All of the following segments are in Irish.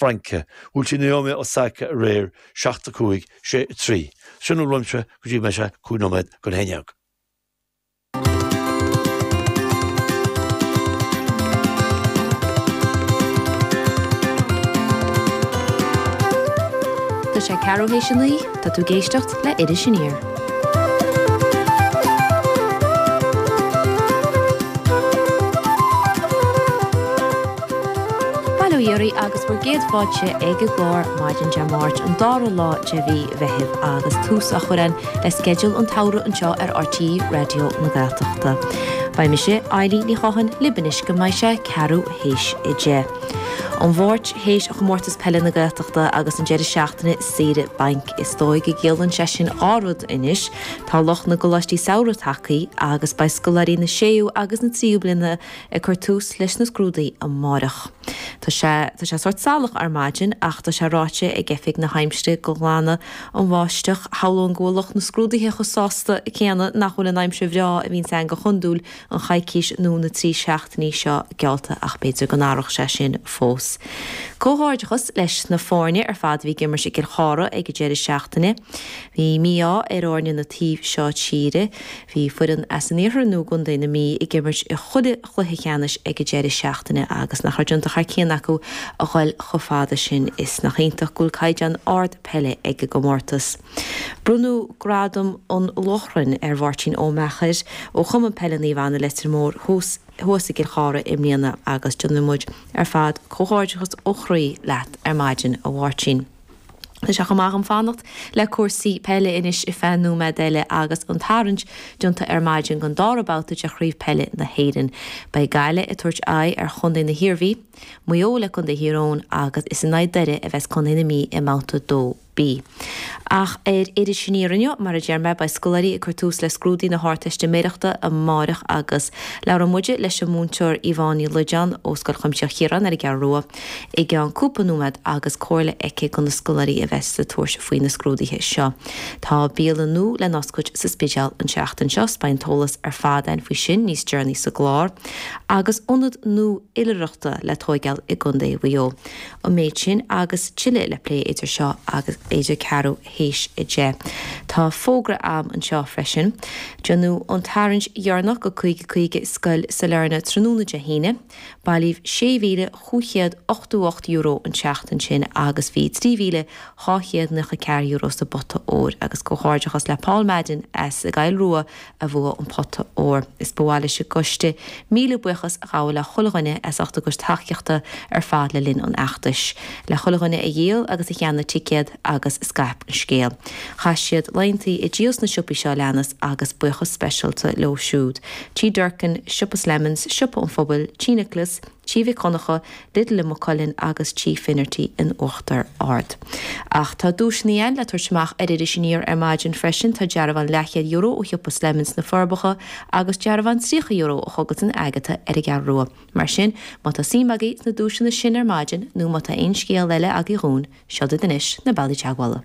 Fraince, Naomi Osaka aréir, seacht a cúig, sé a trí, sin a raibh anois go dtí mbeidh sé cúig nóiméad don haon ndéag. Tá sé ceathrú théis a naoi. Tá tú ag éisteacht le Iris Aniar. Bail ó Dhia oraibh agus bhur gcéad fáilte ag an gclár maidin Dé Máirt, an dara lá de mhí Mheithimh agus tús á chur again le sceideal an tsamhraidh anseo ar RTÉ Raidió na Gaeltachta. Beidh mise, Ailín Ní Chotháin, libh anois go mbeidh sé ceathrú théis a deich. An Mháirt, théis Chomórtas Peile na Gaeltachta agus an deireadh seachtaine Saoire bainc is dóigh go gciallaíonn sé sin dhá rud anois, tá lucht na gcoláistí samhraidh tagthaí agus beidh scoláirí na séú agus na tríú bliana ag cur tús leis na scrúdaí amáireach. Tá sé, tá sé sórt salach ar maidin ach tá sé ráite ag Oifig na hAimsire go nglanfaidh an bháisteach. Shamhlóinn go bhfuil lucht na scrúdaithe chomh sásta céanna nach bhfuil an aimsir bhreá a bhíonns ann go hiondúil an choicís nó na trí seachtainí seo geallta ach b'fhéidir go n-athródh sé sin fós. Comhghairdeachas leis na foirne ar fad a bhí ag imirt i gCill Chartha ag an deireadh seachtaine. Bhí an mí-ádh ar fhoirne na taobh seo tíre. Bhí foireann as an iarthar nó i gcontae na Mí ag imirt i chuile chluiche ceannais ag an deireadh seachtaine agus nach raibh déanta thar cionn acu a ghoil chomh fada sin. Is nach iontach go bhfuil caighdeán ard peile ag an gcomórtas. Bronnadh Gradam an Lóchrainn ar Mháirtín Ó Meachair ó Chumann Peile Naomh Anna, Leitir Móir thuas i gCill Chartha i mbliana agus déanann muid ar fad comhghairdeachas ó chroí leat ar maidin, a Mháirtín. Tá sé chomh maith agam fanacht le cúrsaí peile anois ar feadh nóiméad eile agus an tarraingt déanta ar maidin don dara babhta de Chraobh Peile na hÉireann. Beidh Gaillimh ag tabhairt aghaidh ar chontae na hIarmhí, Maigh Eo le contae Thír Eoghain agus is in aghaidh Doire a bheas contae na Mí i mbabhta 2. B. Ach ar Iris Aniar inniu, mar a deir mé, beidh scoláirí ag cur tús le scrúdaí na hArdteistiméireachta amárach agus labhróidh muide leis an múinteoir Yvonne Ní Loideáin ó Scoil Chuimsitheach Chiaráin ar an gCeathrú Rua i gceann cúpla nóiméad agus comhairle aici do na scoláirí a bheas ag tabhairt faoi na scrúduithe seo. Tá bialann nua le n-oscailt sa Spidéal an seachtain seo is beidh an t-eolas ar fad againn faoi sin níos deireanaí sa gclár. Agus ionad nua oilithreachta le tóigeáil i gCondae Mhaigh Eo. an méid sin agus tuilleadh le plé idir seo agus idir ceathrú théis a deich. Tá fógra agam anseo freisin. Déanadh an tarraingt dheireanach de 50 50 i Scoil Sailearna tráthnóna Dé hAoine. Bailíodh €6,588 an tseachtain sin agus bhí €3,294 sa bpota óir agus comhghairdeachas le Paul Madden as an gCoill Rua a bhua an pota óir is ba mhaith leis an gcoiste míle buíochas a ghabháil le chuile dhuine as ucht a gcuid tacaíochta ar fad le linn an fheachtais, le chuile dhuine a dhíol agus a cheannaigh ticéad agus a scaip an scéal. Chaith siad laethanta ag díol sna siopaí seo a leanas agus buíochas speisialta leo siúd, Tí Durkin, Siopa Slemons, Siopa an Phobail, Tí Nicholas, Tigh Mhic Dhonncha, Lidl i Maigh Cuilinn agus Tigh Finnerty in Uachtar Ard. Ach tá duaiseanna eile le tabhairt amach ar Iris Aniar ar maidin freisin, tá dearbhán leathchéad-euro ó shiopa Slemons sna Forbacha agus dearbhán €30 ó Chuggles and Agatha ar an gCeathrú Rua. Mar sin, má tá suim agaibh sna duaiseanna sin ar maidin nó má tá aon scéal eile agaibh dhúinn, seo daoibh anois na bealaí teagmhála.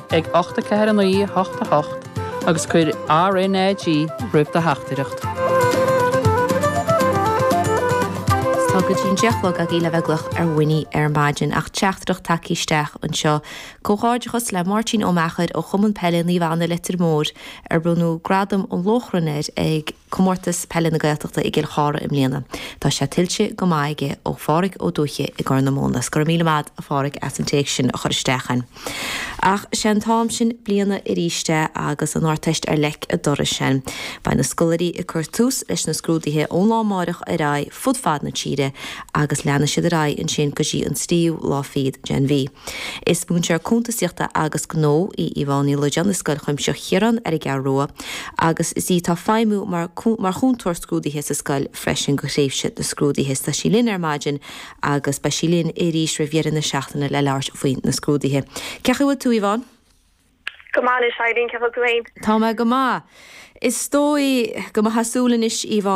ag 849 88 agus cuir RnaG roimh do theachtaireacht. Is tá go dtí an deich a chlog agaibh le bheith ag glaoch orainn ar maidin ach teachtaireacht tagtha isteach anseo. Comhghairdeachas le Máirtín Ó Meachair ó Chumann Peile Naomh Anna Leitir Móir ar bronnadh Gradam an Lóchrainn air ag Comórtas Peile na Gaeltachta i gCill Chartha i mbliana. Tá sé tuillte go maith aige ó Phádhraic Ó Dubhthaigh i gCorr na Móna. 'S go raibh míle maith, a Phádhraic, as an téacs sin a chur isteach chugainn. Ach sé an t-am sin bliana aríst é agus an Ardteist ar leic a' dorais againn. Beidh na scoláirí ag cur tús leis na scrúduithe ón lá amáireach ar aghaidh. fud fad na tíre agus leanfaidh siad ar aghaidh ansin go dtí an tríú lá fichead den mhí. Is múinteoir cuntasaíochta agus gnó í Yvonne Ní Loideáin i Scoil Chuimsitheach Chiaráin ar an gCeathrú Rua agus is í atá ag feidhmiú mar chúntóir scrúdaithe sa scoil freisin do thréimhse na scrúdaithe. Is tá sí linn ar maidin agus beidh sí linn arís roimh dheireadh na seachtaine le labhairt faoi na scrúdaithe. Cé chaoi bhfuil tú, Yvonne? Go maith anois, Eilín, cé chaoi bhfuil tú féin? Tá mé go maith. Is dóigh go mb'fhéasúil anois, Yvonne,